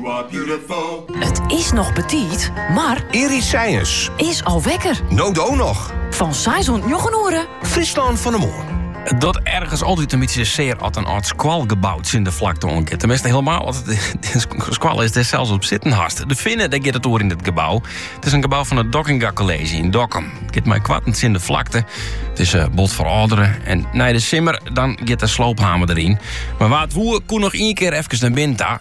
It is noch betiid, mar. Early Science. Is al wekker. No do noch. Fan 6 oant njoggen oere. Fryslân fan 'e Moarn. It docht ergens altyd in bytsje sear as in âld skoalgebou tsjin de flakte oan giet. Tenminste, helemaal as it in skoalle is dêr'tst sels op sitten hast. De Finne, dêr giet it oer yn it gebou. It is in gebou fan it Dockinga College yn Dokkum. It giet mei koarten tsjin de flakte. It is eh, bot ferâldere. En nei de simmer, dan giet de sloophammer deryn. Mar wa't woe, koe noch ien keer efkes nei binnen ta.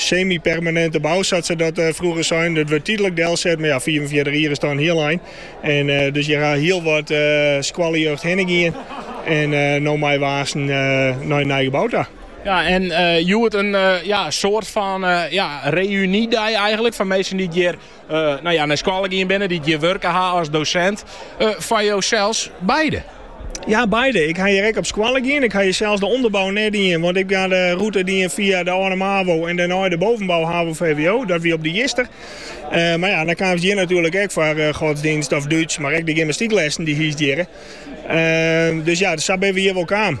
Semy-permaninte bou, sa't se dat frûger sein. Dat wurdt tydlik delset, mar ja, fiifenfjirtich jier is dan in hiel ein. En dus hjir ha hiel wat skoaljeugd hinne gien en no meie we aansen nei in nij gebou ta. Ja, en hjoed in soart fan reuny-dei eigenlik fan minsken dy't hjir nou ja, nei skoalle gien binne, dy't hjir wurke ha as dosint. Foar jo sels beide? Ja, beide. Ik ha hjir ek op skoalle gien. Ik ha hjir sels de onderbouw net dien, want ik ha de rûte dien fia de, eh, de MAVO en dêrnei de bovenbouw HAVO VWO. Dat wie op de Jister. Eh, mar ja, dan kaamst hjir natuerlik ek foar eh, godstsjinst of Dútsk, mar ek de gymnastyklessen dy hiest hjirre. Eh, dus ja, dus sa bin we hjir wol kaam.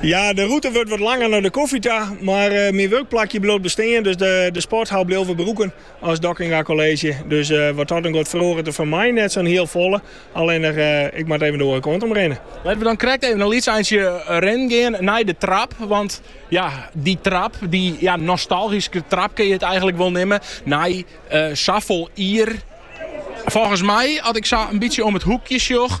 Ja, de rûte wurdt wat langer nei de kofje ta, mar eh, myn wurkplakje bliuwt bestean, dus de, de sporthal bliuw we brûken as Dockinga College. Dus eh, wat dat oangiet feroaret der foar my net sa'n hiel folle, allinnich eh, ik moat even de oare kant om rinne. Litte we dan krekt even in lyts eintsje eh, rinnen gean nei de trap. Want ja, dy trap, dy ja, nostalgyske trap kinne je it eigenlik wol neame. Nei uh, eh, safolle jier. Volgens my, at ik sa in bytsje om it hoekje sjoch,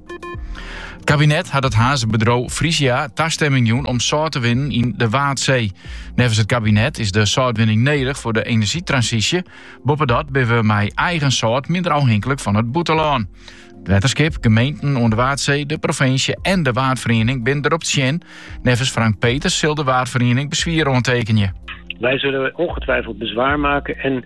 It kabinet hat it Harnzer bedriuw Frisia tastemming jûn om sâlt te winnen yn de Waadsee. Neffens it kabinet is de sâltwinning nedich foar de enerzjytransysje. Boppedat binne we mei eigen sâlt minder ôfhinklik fan it bûtenlân. It wetterskip, gemeenten oan de Waadsee, de provinsje en de Waadferiening binne derop tsjin. Neffens Frank Petersen sil de Waadferiening beswier oantekenje. Wij zullen ongetwijfeld bezwaar maken en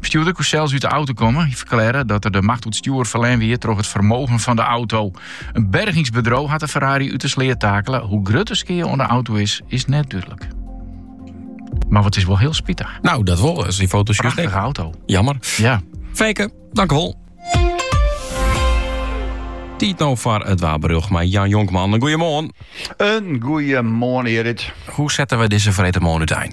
Bestjoerder koe sels út de auto komme. Hy ferklearre dat er de macht oer it stjoer ferlern wie troch it fermogen fan de auto. In bergingsbedriuw hat de Ferrari út de sleat takele. Hoe grut de skea oan de auto is, is net dúdlik. Mar dat is wol hiel spitich. No, dat wol. Ast dy foto's Prachtige auto. Jammer. Ja. Fijke, tankewol. Tiid no foar it waarberjocht mei Jan Jonkman. In goeiemoarn. In goeiemoarn, Erit. Hoe sette we dizze freedtemoarn út?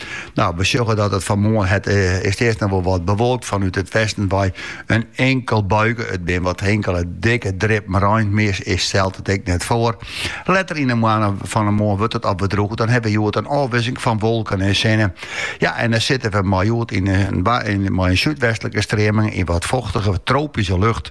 No, we sjogge dat it fan 'e moarn it eh, is earst noch wol wat bewolkt fanút it westen wei in inkel buike. It bin wat inkele dikke drippen rein, mear stelt it ek net foar. Letter yn de moanne fan de moarn wurdt it alwer droech en dan hawwe we hjoed in ôfwikseling fan wolken en sinne. Ja, en dan sitte we mei hjoed yn in, yn, mei in súdwestlike streaming yn wat fochtige tropyske lucht.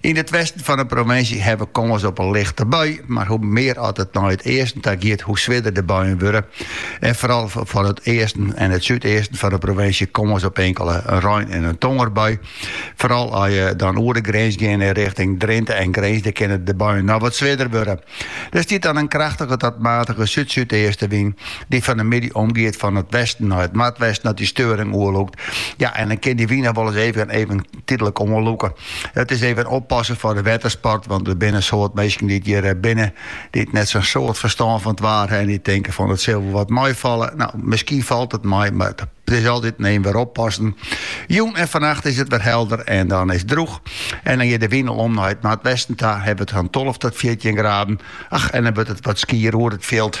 Yn it westen fan 'e provinsje ha we kâns op in lichte bui, mar hoe mear as it nei it easten ta giet, hoe swierder de buien wurde. En foaral yn it easten en it súdeasten fan 'e provinsje kâns op inkele rein- en tongerbui. Foaral as je dan oer de grins gean nei richting Drinte en Grins, dan kinne de buien noch wat swierder wurde. Der stiet dan in krêftige oant matige súd-súdeastenwyn dy't fan 'e middei omgiet fia it westen nei it noardwesten as dy steuring oerlûkt. Ja, en dan kin dy wyn noch wolris even tydlik oanlûke. It is even oppassen foar de wettersport, want der binne in soad minsken dy't hjir eh, binne, dy't net sa'n soad ferstân fan it waar ha en dy't tinke fan it sil wol wat meifalle. Nou, miskien falt it mei, mar it is altyd even wer oppassen. Jûn en fannacht is it wer helder en dan is droeg. En dan giet de wyn al om nei it noardwesten ta, hawwe we it fan 12 tot 14 graden. Ach, en dan wurdt it wat skier oer it fjild.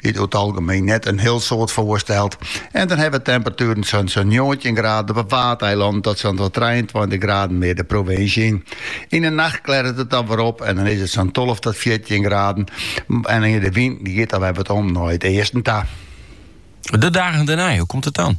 dy't oer it algemeen net in hiel soad foarstelt, en dan hawwe we temperatueren fan sa'n njoggentjin graden op 'e Waadeilannen tot sa'n twa-, trijeentweintich graden mear de provinsje yn. Yn 'e nacht klerret it dan wer op en dan is it sa'n tolve tot fjirtjin graden, en de wyn giet dan wer wat om nei it easten ta. De dagen dêrnei, hoe komt it dan?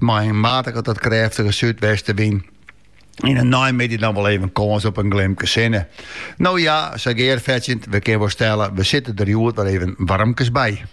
Mei in matige tot krêftige súdwestewyn en yn 'e neimiddei dan wol even kâns op in glimke sinne. No ja, sa gearfetsjend, we kinne wol stelle, we sitte der hjoed wer even warmkes by.